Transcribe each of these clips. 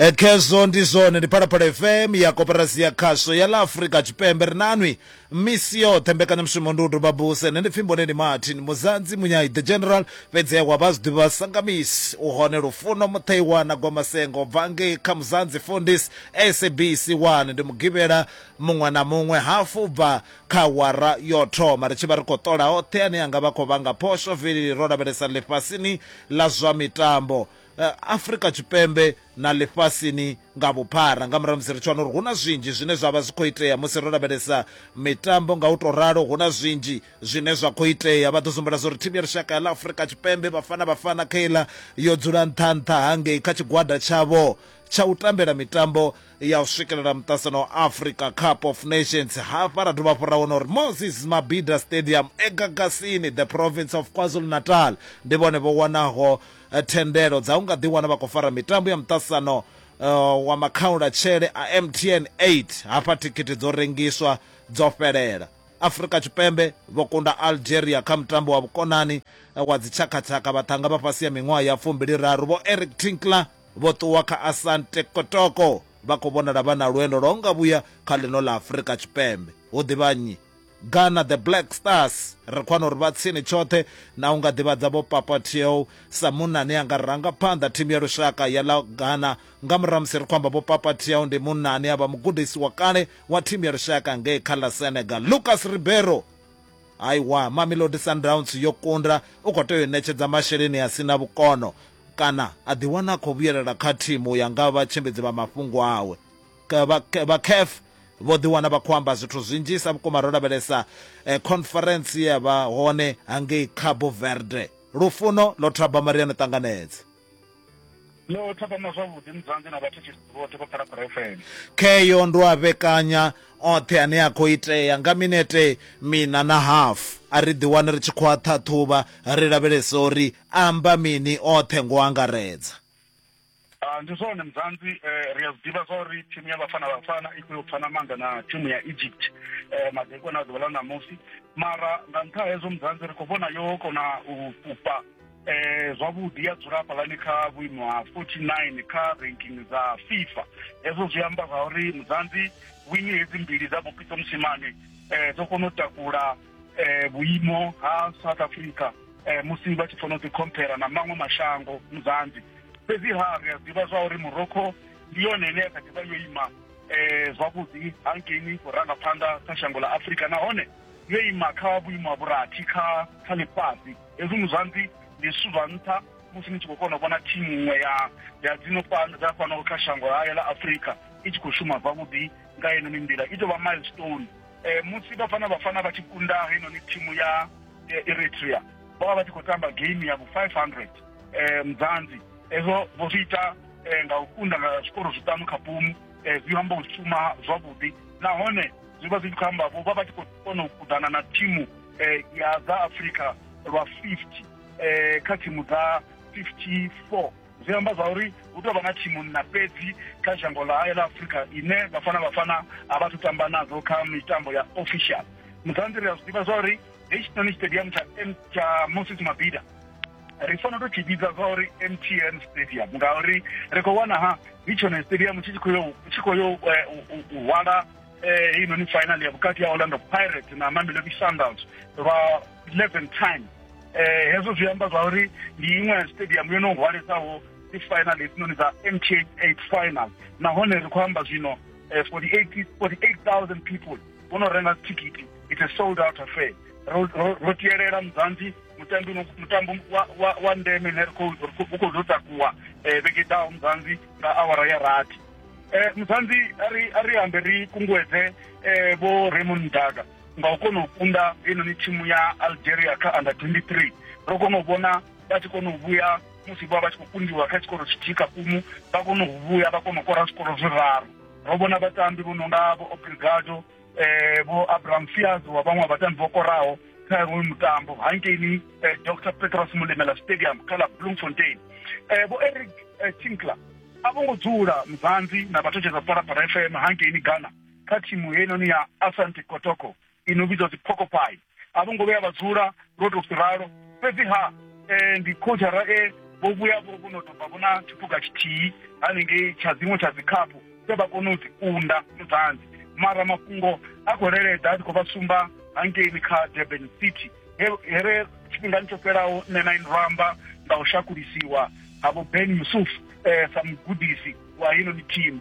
E, khezwo ndi zwone ndi phalaphala fm ya koperasi ya khasho ya ḽa afurika tshipembe ri nanwi misi yoṱhe mbekanyamushumo ndi u doba buse nṋe ndi pfhi mboneni martin muzanzi munyai the general fhedzi wa vha zwiḓivhi vha sangamisi u hone lufuno mutheiwa na gwamasengo bva ngei kha muzanzi fundis sabc 1 ndi mugivhela muṅwe na muṅwe hafu bva kha wara yo thoma ri tshi vha ri khou ṱola hoṱhe ane anga vha khou vhanga phosho vili ro lavhelesa ḽifhasini ḽa zwa mitambo Afrika Tshipembe na ḽifhasini nga vhuphara. Nga murahu ha musi ri tshi wana uri hu na zwinzhi zwine zwa vha zwi khou itea musi ro lavhelesa mitambo nga u tou ralo, hu na zwinzhi zwine zwa khou itea. Vha ḓo zwi humbula zwa uri thimu ya lushaka ya ḽa Afrika Tshipembe, Bafana Bafana kha iḽa, yo dzula nṱha-nṱha hangei kha tshigwada tshavho tsha u tambela mitambo ya u swikelela muṱasano wa Africa Cup of Nations. Hafha ra dovha hafhu ra wana uri Moses Mabhida Stadium e Gagasini, The Province of KwaZulu-Natal, ndi vhone vho wanaho thendelo dza u nga ḓiwana vha khou fara mitambo ya muṱaṱisano wa makhaulatshele a MTN 8 hafha thikhithi dzo rengiswa dzo fhelela. Afrika Tshipembe vho kunda Algeria kha mutambo wa vhukonani wa dzitshakhatshaka vhaṱhanga vha fhasi ha miṅwaha ya fumbili raru vho Eric Tinkler vho ṱuwa kha Asante Kotoko vha khou vhonala vha na lwendo lwa u nga vhuya kha ḽino ḽa Afrika Tshipembe. Hu ḓivha nnyi? Ghana the Black Stars ri khou wana uri vha tsini tshoṱhe na u nga ḓivhadza vho Papa Tiew sa munna ane a nga ranga phanḓa thimu ya lushaka ya ḽa Ghana nga murahu musi ri khou amba vho Papa Tiew ndi munna ane a vha mugudisi wa kale wa thimu ya lushaka ngei kha ḽa Senegal Lucas Ribeiro haiwa Mamelodi Sundowns yo kunda u khou tea u ṋetshedza masheleni a si na vhukono kana a ḓiwana a khou vhuyelela kha thimu ya nga vhatshimbidzi vha mafhungo awe vha caf vho ḓiwana vha khou amba zwithu zwinzhisa vhukuma ro lavhelesa eh, conference ya vha hone hangei cabo verde lufuno lo thaba mariano ṱanganedze lo thapama zwavhuḓi mudzanzi na vhathu vhoṱhe vha phalaphala fm kheyo ndo a vhekanya oṱhe ane a khou itea nga minete mina na hafu a ri ḓiwane ri tshi khou a ṱhaṱhuvha ri lavhelesa uri amba mini oṱhe ngo angaredza Ah, ndi zwone mzanzi eh, ri a zwi ḓivha zwa uri thimu ya vhafana vhafana i khou yo pfana maanḓa na thimu ya egypt eh, madekwana a ḓuvha ḽa ṋamusi mara nga nṱha ha hezwo mzanzi ri khou vhona yo kona u fhufha eh, zwavhuḓi ya dzula hafhalani kha vhuimo ha 49 kha ranking dza fifa hezwo zwi amba zwa uri mzanzi wini hedzi mbili dza bopito musimane eh, dzo kona u takula eh, vhuimo ha south africa eh, musi vha tshi funa u ḓikhomphera na maṅwe mashango muzanzi fhedzi ha ri a ḓivha zwa uri morocco ndi yone ine ya kha ḓivha yo ima eh, zwavhuḓi hangeini u ranga phanḓa kha shango ḽa afurika nahone yo ima kha vhuimo ha vhurathi kha kha ḽifhasi hezwi muzanzi ndi zwithu zwa nṱha musi ni tshi khou kona u vhona thimu iṅwe ya ya dzino fhano dza fhano kha shango hayo ḽa afurika i tshi khou shuma zwavhuḓi nga yenoni nḓila i tou vha milestone e, musi bafana bafana vha tshi kunda heinoni thimu ya e, eritrea vho vha vha tshi khou tamba game ya vhu-500 e, mdzanzi hezwo vho zwi ita e, nga u kunda nga zwikoro zwiṱanu kha pumu e, zwi amba u shuma zwavhuḓi nahone zwi vha zwi tshi khou amba vho vha vha tshi khou kona u kuḓana na thimu e, ya dza afrika lwa 50 e, kha thimu dza 54 zwi amba zwa uri hu tou vha na thimunna fhedzi kha shango ḽa hayo ḽa afurika ine vhafana vhafana a vha thu tamba nadzo kha mitambo ya official musanzi ri a zwi ḓivha zwa uri hei tshinoni stadium tsha tsha moses mabida ri fanela to tshi vhidza zwa uri mtn stadium ngauri ri khou wana ha ndi tshone stadium tshi khou yo tshi khou yo eh, u hwala eh, heinoni final ya vhukati ya orlando pirates na mamelodi sundowns lwa 11 time eh hezwo zwi amba zwa uri ndi iṅwe ya stadium yo no hwalesaho dzi final hedzinoni dza mth 8 final nahone ri khou amba zwino 48 eh, 48000 people vho no renga thikiti it's a sold out affair ro tiyelela mudzanzi mutambi mutambo wa ndeme ne u khou ḓo takuwa eh, vhege ḓaho mudzanzi nga awara ya rathi um mudzanzi a ri ambe ri kunguwedze um vho raymond daga nga u kona u kunda heinoni thimu ya algeria kha under 23 ro kona u vhona vha tshi kona u vhuya musi vha vha tshi khou kundiwa kha tshikoro tshithihi kha kumu vha kona u vhuya vha kona u kora zwikoro zwiraru ro vhona vhatambi vho no nga vho obrigado um eh, vho abraham fias wa vhaṅwe vhatambi vho koraho kha iwe mutambo hankeini eh, dr petros mulemela stadium kha la bloemfontein eh, vho eric tinkler a vho ngo dzula muzanzi na vhathu tshedza phalaphala fm hankeini ghana kha thimu heinoni ya asante kotoko i no vhidzwa dziphokopai a vho ngo vhuya vha dzula ro tou ralo fhedziha um ndi khotshara e vho vhuya vho vho no tou vha vhona tshiphuga tshithihi hanengei tsha dziṅwe tsha dzikhaphu dze vha kone u dzi kunda mudzanzi mara mafhungo a khou leledza a tshi khou vha sumba hangeini kha durban city here tshifhingani tsho fhelaho nṋe na inramba nga u shakulisiwa ha vho ben yusuf um sa mugudisi wa heinoni thimu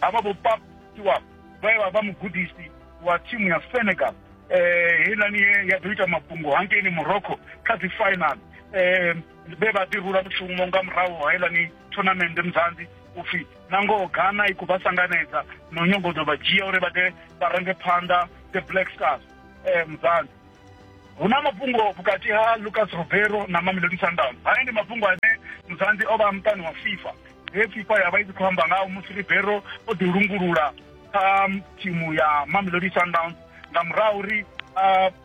Havha vho Pap Stewart vhe vha vha mugudisi wa thimu ya Senegal eh heiḽani ye ya ḓo ita mafhungo hangeini Morocco kha dzi final eh vhe vha ḓi rula mushumo nga murahu ha heiḽani tournament muzanzi upfhi na ngoho Ghana i khou vha sanganedza no nyongo ḓo vha dzhia uri vha ḓe vha range phanḓa the Black Stars eh muzanzi hu na mafhungo vhukati ha Lucas Ribeiro na Mamelodi Sundowns haya ndi mafhungo ane muzanzi o vha muṱani wa FIFA he fifa ya vha i tshi khou amba ngaho musi ribero o ḓi lungulula kha um, thimu ya mamelodi sundowns nga murahu uri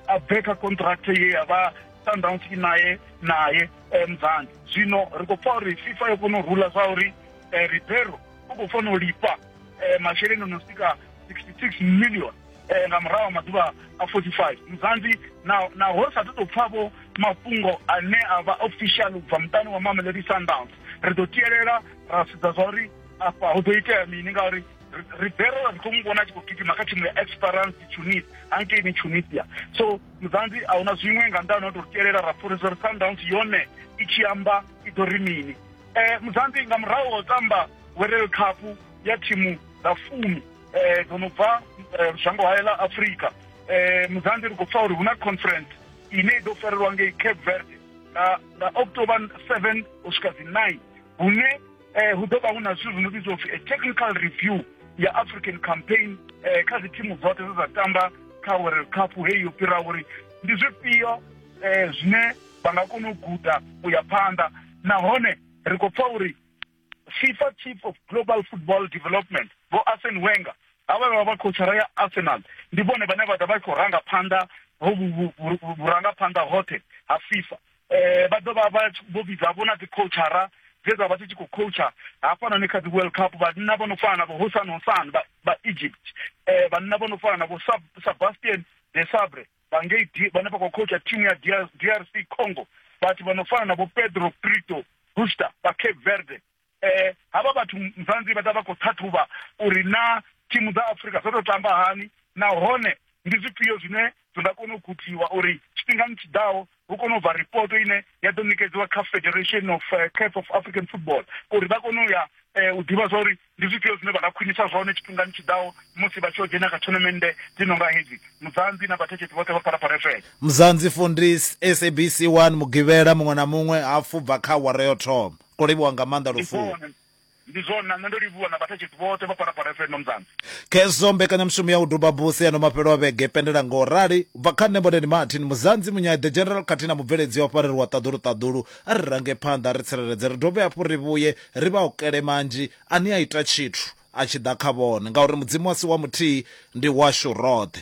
a bve kha contract ye ya vha sundowns i naye naye eh, mzanzi zwino ri khou pfa uri fifa yo kona u rula zwa uri eh, ribero u khou fanela u lifha eh, masheleni o no swika 66 million eh, nga murahu ha maḓuvha a 45 muzanzi naho ri sa ṱo tou pfavho mafhungo ane a vha official u bva muṱani wa mamelodi sundowns ri ḓo tielela ra sedza zwa uri afha hu ḓo itea mini ngauri ribero ri khou mu vhona a tshi khou gidima kha thimu ya esperance tunis hankeini tunisia so muzanzi a huna zwiṅwe nga nḓani o tou tielela ra pfhorisa uri sundowns yone i tshi amba i ḓo ri mini um muzanzi nga murahu wa u tamba werel cup ya thimu dza fumi eh, dzo no bva eh, shango hayo ḽa afrika eh, muzanzi ri khou pfa uri hu na conference ine i ḓo farelwa ngei cape verde nga nga october 7 u swika dzi 9 hune eh, hu ḓo vha hu na zwithu zwi no vhidzwa upfi a technical review ya african campaign eh, kha dzithimu dzoṱhe dze dza tamba kha world cup heyi yo fhira uri ndi zwifhio eh, zwine vha nga kona u guda u ya phanḓa nahone ri khou pfa uri fifa chief of global football development vho arsen wenger havha vha vha khotshara ya arsenal ndi vhone vhane vha ḓa vha khou ranga phanḓa vhurangaphanḓa hoṱhe ha fifa um vha ḓo vha vha vho vhidza vho na dzi khotshara dze dza vha dzi tshi khou coacha hafhanoni kha dzi world cup vhanna vho no fana na vho hosan hosan vha egypt um vhanna vho no fana na vho sebastian de sabre vha ngei vhane vha khou khotsha thimu ya drc congo vhathu vha no fana na vho pedro prito buster vha cape verde um havha vhathu mzanzi vha ḓa vha khou ṱhaṱhuvha uri na thimu dza afrika dzo tou tamba hani nahone ndi zwifhio zwine zwi nga kona u gudiwa uri tshifhingani tshiḓaho hu kone u bva ripoto ine ya ḓo ṋekedziwa kha federation of uh, caf of african football uri vha kone u ya eh, u ḓivha zwa uri ndi zwifhio zwine vha nga khwinisa zwone tshifhingani tshiḓaho musi vha tshi o dzhena kha tournamende dzi no nga hedzi muzanzi na vhathetshetsi vhoṱhe vha phalaphala fm muzanzi fundis sabc 1 mugivhela muṅwe na muṅwe hafhu bva kha awara yo thoma ko livhiwa nga maanḓa lufuno Ndi zwone, na nṋe ndo livhuwa, na vhathetshedzi vhoṱhe vha Phalaphala FM Nomzana. Khezwo mbekanyamushumo ya u duba buse ya no mafhelo a vhege pendela ngo rali. U bva kha nṋe Mboneni Martin, Muzanzi, Munyayi the General khathihi na mubveledzi o farelwa ṱaḓulu ṱaḓulu. A ri range phanḓa, a ri tsireledze, ri dovhe hafhu ri vhuye ri vha okele manzhi a ni a ita tshithu a tshi ḓa kha vhone, ngauri Mudzimu a si wa muthihi, ndi washu roṱhe.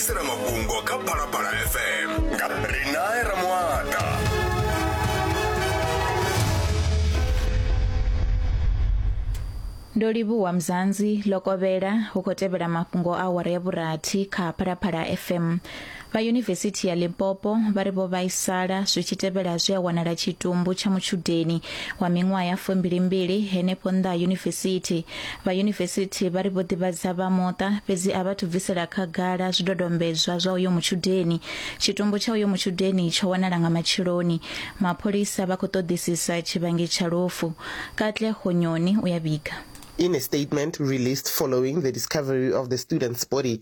isela mafhungo kha phalaphala fm nga rinae ramuata ndo livhuwa mzanzi lokovhela hu khou tevhela mafhungo a awara ya vhurathi kha phalaphala fm vha yunivesithi ya limpopo vha ri vho vhaisala zwi tshi tevhela zwi a wanala tshitumbu tsha mutshudeni wa miṅwaha ya fumbilimbili henefho nnḓa ha yunivesithi Vha yunivesithi vha ri vho ḓivhadza vha muṱa fhedzi a vha thu bvisela khagala zwidodombedzwa zwa uyo mutshudeni. Tshitumbu tsha uyo mutshudeni tsho wanala nga matsheloni. Mapholisa vha khou ṱoḓisisa tshivhangi tsha lufu. Katle Gonyoni u ya vhiga. In a statement released following the discovery of the student's body,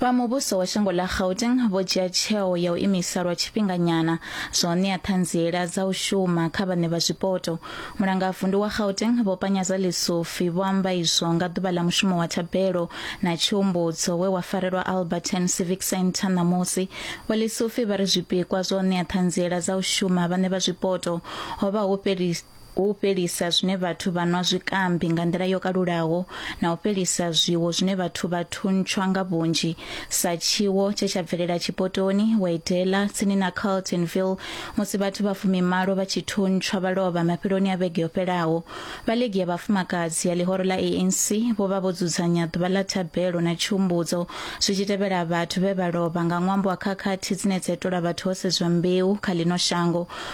vha muvhuso wa shango ḽa gauteng vho dzhia tsheo ya u imisa lwa tshifhinganyana zwa u ṋea ṱhanziela dza u shuma kha vhaṋe vha zwipoto mulangavundu wa gauteng vho panyaza lisufi vho amba izwo nga ḓuvha ḽa mushumo wa thabelo na tshiumbudzo we wa farelwa alberton civic centre ṋamusi vho lisufi vha ri zwipikwa zwa u ṋea ṱhanziela dza u shuma vhaṋe vha zwipoto ho vha hu fhelisa hu u fhelisa zwine vhathu vha nwa zwikambi nga nḓila yo kalulaho na u fhelisa zwiwo zwine vhathu vha thuntshwa nga vhunzhi sa tshiwo tshe tsha bvelela tshipotoni waidela tsini na carltonville musi vhathu vha fumimalo vha tshi thuntshwa vha lovha mafheloni a vhege yo fhelaho vha ligi ya vhafumakadzi ya ḽihoro ḽa anc vho vha vho dzudzanya ḓuvha ḽa thabelo na tshumbudzo zwi tshi tevhela vhathu vhe vha lovha nga ṅwambo wa khakhathi dzine dza itola vhathu ho sedzwa mbeu kha ḽino shango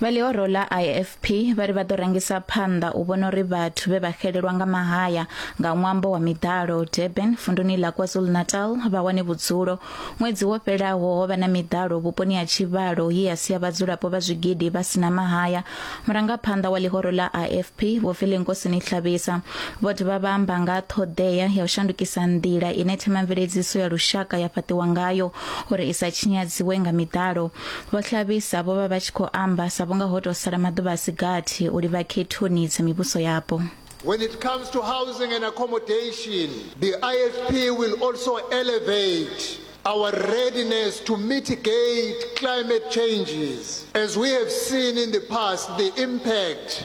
Vha ḽihoro ḽa IFP vha ri vha ḓo rangisa phanḓa u vhona uri vhathu vhe vha xelelwa nga mahaya nga ṅwambo wa miḓalo Durban vunduni ḽa KwaZulu-Natal vha wane vhudzulo. Ṅwedzi wo fhelaho ho vha na miḓalo vhuponi ha Tshivhalo ye ya sia vhadzulapo vha zwigidi vha si na mahaya. Murangaphanḓa wa ḽihoro ḽa IFP Vho Filinkosini Hlabisa vho dovha vha amba nga ha ṱhoḓea ya u shandukisa nḓila ine themamveledziso ya lushaka ya fhaṱiwa ngayo uri i sa tshinyadziwe nga miḓalo. Vho Hlabisa vho vha vha tshi khou amba sa vhunga ho tou sala maḓuvha a si gathi u livha khethoni dza mivhuso yapo. When it comes to housing and accommodation, the IFP will also elevate our readiness to mitigate climate changes. As we have seen in the past, the impact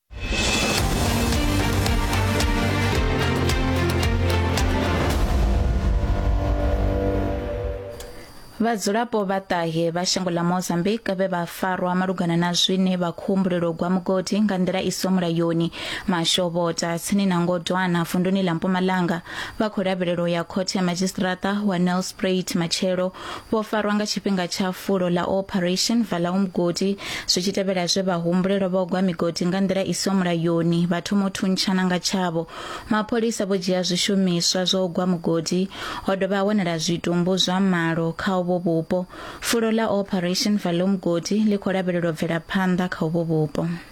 vhadzulapo vha ṱahe vha shango ḽa mozambique vhe vha farwa malugana na zwine vha khou humbulelwa u gwa mugodi nga nḓila i so mulayoni mashovhota tsini na ngodwana vunduni ḽa mpumalanga vha khou lavhelelwa ya khothe ya madzhisiṱiraṱa wa nelsprait matshelo vho farwa nga tshifhinga tsha fulo ḽa Operation Vala Umgodi zwi tshi tevhela zwe vha humbulelwa vha gwa migodi nga nḓila i siho mulayoni vha thoma u thuntshana nga tshavho mapholisa vho dzhia zwishumiswa zwa u gwa mugodi ho dovha ha wanala zwitumbu zwa malo kha uvho vhupo fulo ḽa Operation Vala Umgodi ḽi khou lavhelelwa u bvela phanḓa kha uvho vhupo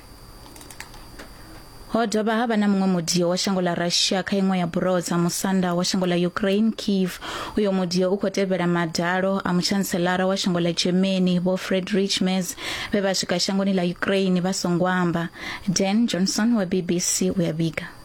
Ho dovha ha vha na muṅwe mudio wa shango ḽa Russia kha iṅwe ya buroho dza musanda wa shango ḽa Ukraine, Kiev. Uyo mudio u khou tevhela madalo a mutshanselara wa shango ḽa Germany, Vho Friedrich Merz, vhe vha swika shangoni ḽa Ukraine vha songo amba. Dan Johnson wa BBC u ya vhiga.